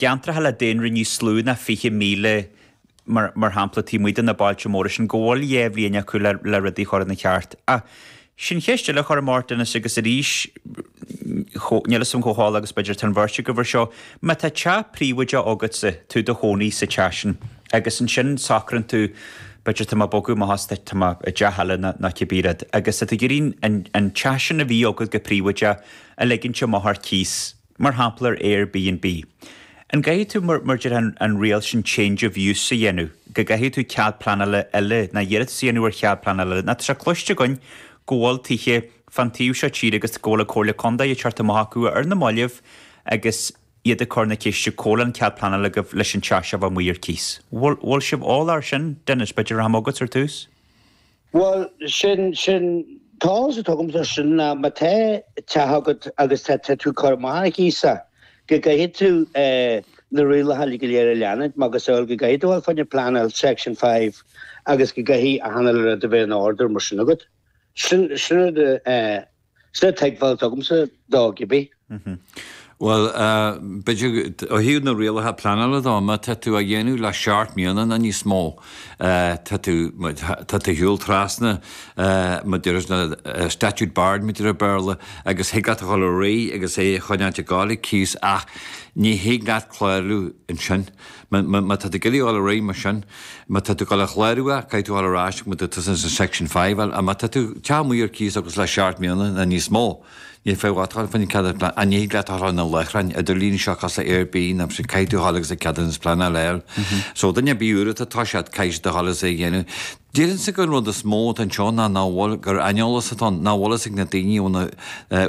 gceantracha le daonra níos lú ná 20,000 mar shampla taobh amuigh de na bailte móra sin, go bhfuil dhá bhliain acu le rudaí a chur ina cheart. Ach sin ceist eile a chuir ort Dennis agus arís níl 'fhios a'm chomh heolach agus b'fhéidir is atá an bheirt agaibh ar seo, má tá teach príobháideach agatsa, tú i do chónaí sa teach sin agus ansin socraíonn tú b'fhéidir tá mé ag bogadh amach isteach i dteach eile nó cibé rud agus tá tú ag iarraidh an teach sin a bhí agat go príobháideach a ligint amach ar cíos Mar shampla ar Airbnb. An gcaithfidh tú, mar a deir an riail sin change of use a dhéanamh, go gcaithfidh tú cead pleanála eile, ná iarratas a dhéanamh ar chead pleanála eile? Ná tá sé cloiste againn go bhfuil tithe fán taobh seo tíre agus go bhfuil an Chomhairle Contae ag tabhairt amach daofa ar na maillibh agus iad ag cur na ceiste an bhfuil an cead pleanála agaibh leis an teach seo a bheith amuigh ar cíos. Bhfuil sibh eolach ar sin? Dennis, b'fhéidir go rachaidh mé chugatsa ar tús? Bhuel, sin, sin, an t-eolas atá agam de sin ná má tá teach agat agus tá tú á chur amach ar cíos, go gcaithfidh tú na rialacha go léir a leanúint, macasamhail go gcaithfidh tú an fhoirm pleanála Section Five agus go gcaithfidh an clárú bheith in ordú mar sin agat. Sin, sin rud a, a. Sin an tuigbheáil atá agamsa dó, cibé. Bhuel, b'fhéidir ó thaobh na rialacha pleanála de, má tá tú á dhéanamh le seacht mbliana nó níos mó, tá tú, tá tú ar shiúl trasna, mar a deir siad statute barred mar a deirtear i mBéarla, agus thig leat a dhul ar aghaidh agus é a choinneáil ag gabháil ar cíos, ach ní thig leat clárú ansin. Má tá tú ag iarraidh dul ar aghaidh mar sin, má tá tú ag dul a chlárú, caithfidh tú dhul ar ais go dtí an Section Five, ach má tá do theach amuigh ar cíos agus le seacht mbliana ná níos mó, níl féidhm duit dhul faoin ceadúnas pleanála, ach ní thig leat a dhul ar na láithreáin idirlíne seo cosúil le Airbnb, mar sin, caithfidh tú dhul agus an ceadúnas pleanála a fháil. So duine ar bith atá orthu sin, caithfidh siad a dhul is é a dhéanamh. Déarfainnse gur an rud is mó atá anseo ná nach bhfuil, gur aineolas atá ann, nach bhfuil fhios ag na daoine nó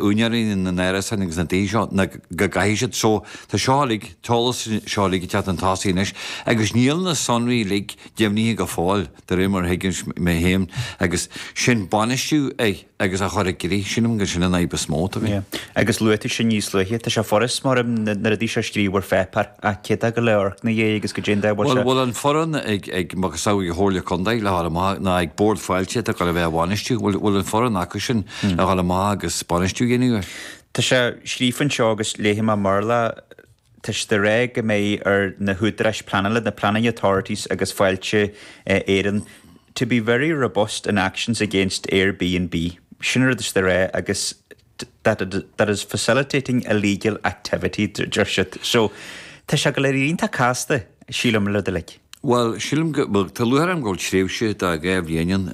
úinéirí na n-árasán agus na dtithe seo go gcaithfidh siad seo, tá seo uilig, an t-eolas seo uilig ag teacht chun tosaigh anois agus níl na sonraí uilig deimhnithe go fóill de réir mar a thuigimse mé féin agus sin a bhainistiú ag agus a chur i gcrích, sílim gur sin an fhadhb is mó atá againn. Yeah. Agus luaigh tú sin níos luaithe. Tá sé furast domh na rudaí seo a scríobh ar pháipeár, ach cé atá ag gabháil a amharc ina dhiaidh agus go dtéann dá bhfuil sé? Bhfuil, bhfuil an fhoireann ag, ag macasamhail an Chomhairle Contae, le dhul amach, ná ag Bord Fáilte atá ag gabháil a bheith á bhainistiú, bhfuil, bhfuil an fhoireann acu sin le dhul amach agus bainistiú a dhéanamh air? Tá sé scríofa anseo agus léifidh mé i mBéarla. tá sé ag rá go mbeidh ar na húdaráis pleanála, na planning authorities agus Fáilte Éireann, to be very robust in actions against Airbnb, sin an rud is déanaí agus that it that is facilitating illegal activity, deir siad. So, tá sé go léir iontach casta, sílim, an rud uilig. Bhuel, sílim go, bhuel, tá lúcháir orm go bhfuil tréimhse de dhá bhliain ann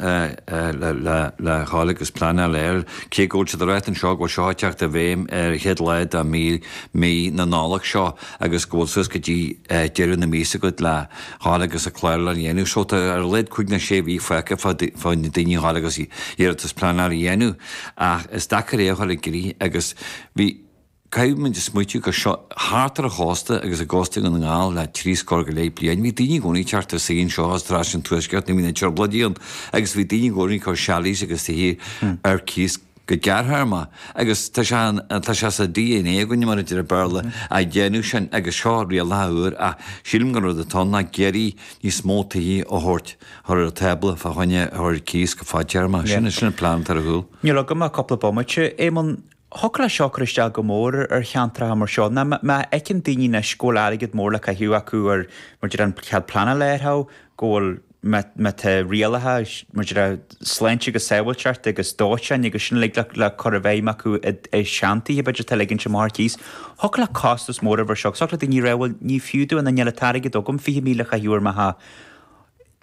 le ghabháil agus pleanáil air, cé go bhfuil siad ag rá anseo go bhfuil seo ag teacht i bhfeidhm ar an chéad lá de mhí, mí na Nollag seo agus go bhfuil suas go dtí deireadh na míosa agat le ghabháil agus an clárú a dhéanamh. So, tá ar a laghad cúig nó sé mhí fágtha ag daoine a ghabháil agus iarratas pleanála a dhéanamh ach is deacair é a chur i gcrích agus bhí, Caithfidh muid a smaoitiú gur seo, thart ar an chósta agus i gcósta Dhún na nGall le trí scór go leith bliain, bhí daoine i gcónaí ag teacht ar saoire anseo as tráth sin Tuaisceart nuair a bhí na Trioblóidí ann agus bhí daoine i gcónaí ag cur chalets agus tithe ar cíos go gearrthéarma agus tá sé ann, tá sé sa DNA againne, mar a deir Béarla, a dhéanamh sin agus seo rialacha úr ach sílim go an rud atá ann ná ag iarraidh níos mó tithe a thabhairt chuig an tábla fá choinne a chur ar cíos go fadtéarma. Sin, sin an plean atá ar a chúl. Níl agam ach cúpla bomaite, Éamonn. Thiocfadh le seo cur isteach go mór ar cheantracha mar seo ná má fheiceann daoine anois go bhfuil airgead mór le caitheamh acu ar mar déarfá an cead pleanála ar thau, go bhfuil má má tá rialacha mar déarfá sláinte agus sábháilteachta agus dóiteáin agus sin uilig le le cur i bhfeidhm acu i i seantithe a b'fhéidir atá le ligint amach ar cíos. Thiocfadh le costas mór a bheith ar seo agus thiocfadh le daoine a rá bhuel ní fiú domh nó níl an t-airgead agam 20,000 a chaitheamh ar mo theach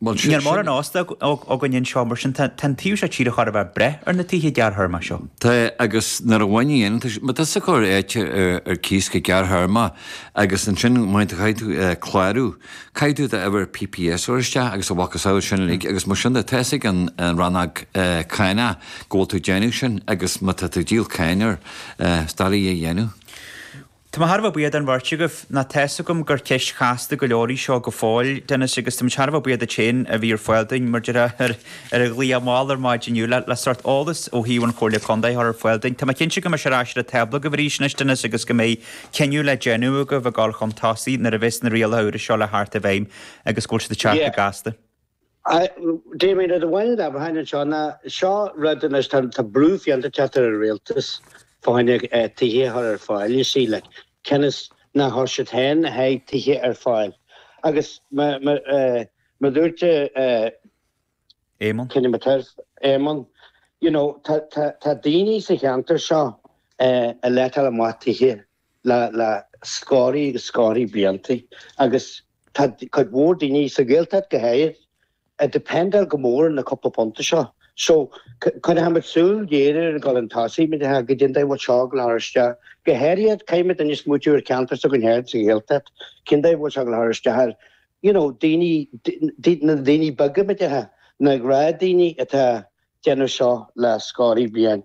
Ní raibh mórán óstáin againn anseo, mar sin tá an taobh seo tíre chóir a bheith ag brath ar na tithe gearrthéarma seo. Tá, agus nuair a mhínigh Dennis, má tá tú ag cur áite ar cíos go gearrthéarma agus ansin má chaithfidh tú clárú, caithfidh tú d'uimhir PPS a chur isteach agus a mhacasamhail sin uilig agus mar sin de, tá fhios ag an rannóg cánach go bhfuil tú ag déanamh sin agus má tá tú ag díol cáin air, is doiligh é a dhéanamh. Tá mé thar a bheith buíoch den bheirt agaibh. Ná tá's agam gur ceist chasta go leor í seo go fóill, Dennis, agus tá muid thar a bheith buíoch duit féin a bhí ar fáil dúinn, mar déarfá, ar an ghlaoch mall ar maidin inniu le sórt eolas ó thaobh an Chomhairle Contae a chur ar fáil dúinn. Tá mé cinnte go mbeidh sé ar ais ar an tábla agaibh arís anois, Dennis, agus go mbeidh cinneadh le déanamh agaibh ag gabháil chun tosaigh nuair a bheas na rialacha úra seo le theacht i bhfeidhm agus go bhfuil siad ag teacht go gasta. Damien, Rud amháin a déarfainn anseo ná seo rud anois, tá brú fiánta ag teacht ar an rialtas fá choinne tithe a chur ar fáil, you see, like, cionn is nár chuir siad féin le haghaidh tithe ar fáil agus mar a dúirt Éamonn, cinnte mar a dúirt Éamonn, you know, tá daoine sa cheantar seo ag letáil amach tithe le scórthaí agus scórthaí blianta agus tá cuid mhór daoine, sa Ghaeltacht go háirithe, ag dependáil go mór ar na cúpla punta seo. So, coinneochaidh muid súil ghéar air ag gabháil chun tosaigh, mar déarfá, caidé an dóigh a bhfuil seo ag gabháil a chur isteach. Go háirithe, caithfidh muid anois smaoitiú ar cheantar s'againn féin sa Ghaeltacht, cén dóigh a bhfuil seo ag gabháil a chur isteach air, you know, daoine, na daoine beaga, mar déarfá, na gnáthdhaoine atá ag déanamh seo le scórthaí bliain.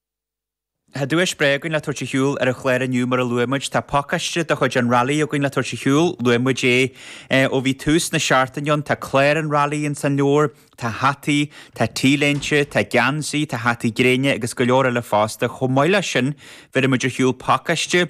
Tá duais breá againn le tabhairt ar shiúl ar an chlár inniu mar a luaigh muid. Tá pacáiste de chuid an Railí againn le tabhairt ar shiúl, luaigh muid é ó bhí tús na seachtaine ann. Tá clár an Railí ins an leabhar, tá hataí, tá t-léinte, tá geansaí, tá hataí gréine agus go leor eile fosta. Chomh maith leis sin bheirfidh muid ar shiúl pacáiste.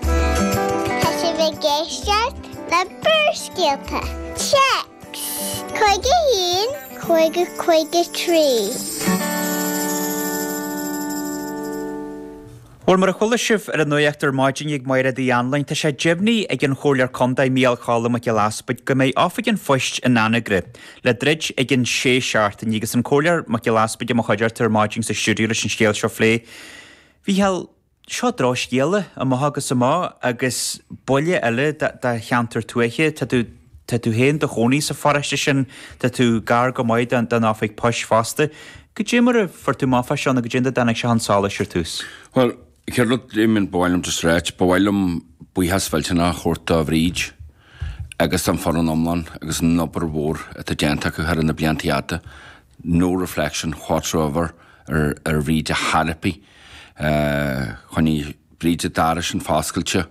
Tá sibh ag éisteacht le Barrscéalta, text, 51 50 53. Bhuel, mar a chuala sibh ar an nuacht ar maidin ag Máire Uí Anluain, tá sé deimhnithe ag an Chomhairleoir Contae Mícheál Choilm Mac Giolla Easbuig go mbeidh Oifig an Phoist in Anagaire le druid i gceann 6 seachtaine agus an Comhairleoir Mac Giolla Easbuig i mo chuideachta ar maidin sa stiúideo leis an scéal seo a phlé. Mhícheál. Seo drochscéala, amach agus amach, agus buille eile do cheantar tuaithe. Tá tú féin do chónaí sa pharóiste sin, tá tú gar go maith don oifig poist fosta. Cad é mar a fuair tú amach fá seo, nó cad é an dóigh a dtáinig seo chun solais ar tús? Bhuel, chéad rud, Damien, ba mhaith liom just ráit, ba mhaith liom buíochas mhillteanach a thabhairt do Bhríd agus don foireann iomlán agus an obair mhór atá déanta acu thar na blianta fhada. no reflection whatsoever ar ar Bhríd ar chor ar bith. Choinnigh Bríd an doras sin foscailte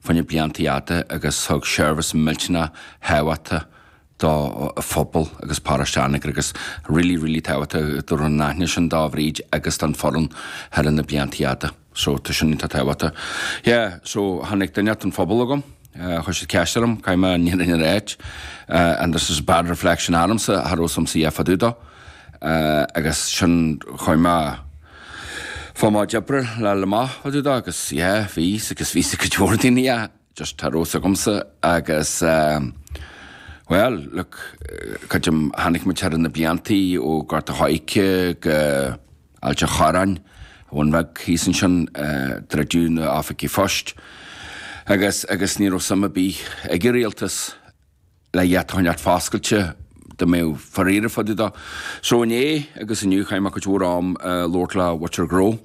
fá choinne blianta fhada agus thug seirbhís millteanach thábhachtach do phobal agus paráiste Anagaire agus really, really tábhachtach go raibh an t-aitheantas sin do Bhríd agus don foireann thar na blianta fhada. So tá sin iontach tábhachtach. Yeah, so tháinig duine as an phobal agam, chuir siad ceist orm cad é mar ní rinne ar áit and this is bad reflection ormsa cha raibh a fhios agam CF fá dtaobh dó agus sin chuir mé fá mo deborah le le mo fá dtaobh dó agus yeah, bhí agus bhí a fhios ag go leor daoine ach just cha raibh a fhios agamsa agus well, look, cad é a chonaic muid thar na bliantaí ó Ghort an Choirce go Ailt a' Chorráin, an Bun Beag thíos ansin, druideadh na h-oifigí phoist agus agus ní raibh suim a' bith ag a' Rialtas le iad a choinneáilt foscailte, dá mbeifeá dáiríre fá dtaobh dó. So inné agus inniu chaith mé cuid mhór am a' labhairt le muintir gnó,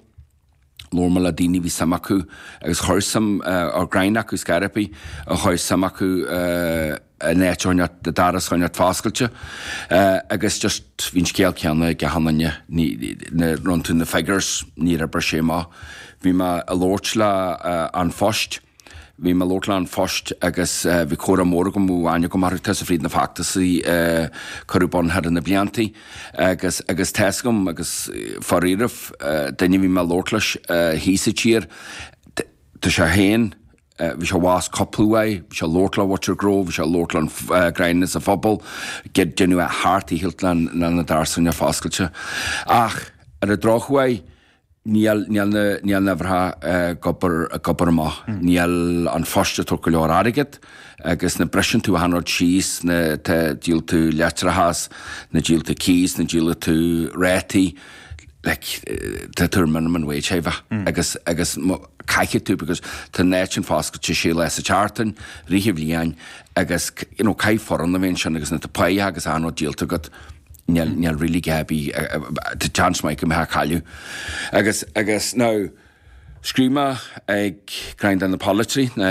labhair mé le daoine a bhí suim acu agus cha raibh suim ag ceann acu ar scor ar bith, cha raibh suim acu, an áit a choinneáilt, an doras a choinneáilt foscailte agus just bhí an scéal céanna ag achan duine, nuair a rinne tú na figures níor oibir sé amach. Bhí mé a labhairt le An Phost, bhí mé a labhairt le An Phost agus bhí comhrá mór agam ó aithne agam orthu, tusa fríd na feachtasaí a cuireadh ar bun thar na bliantaí agus agus tá's agam agus dáiríre an duine a bhí mé a labhairt leis thíos sa tír, tá sé féin, Bhí sé abhus cúpla uair, bhí sé ag labhairt le lucht gnó, bhí sé ag labhairt le gráinnín sa phobal, deineadh é thart, a shíltear, na doirse foscailte. Ach ar an drochuair, níl na huimhreacha ag obair amach, níl An Post ag tabhairt go leor airgid, agus nuair a bhriseann tú achan rud síos, na, tá, díolann tú leictreachas, nuair a dhíolann tú cíos, nuair a dhíolann tú rátaí, like, tá tú ar minimum wage, seichimh, agus, agus, caithfidh tú because tá an áit sin foscailte sé lá sa tseachtain, fríd an bhliain agus you know caithfidh foireann a bheith ansin agus nuair atá páighe agus achan rud díolta agat níl, níl really cá bith tá seans maith go mbeifeá ag cailleadh agus, agus now scríobh mé ag gráinnín de na polaiteoirí, na.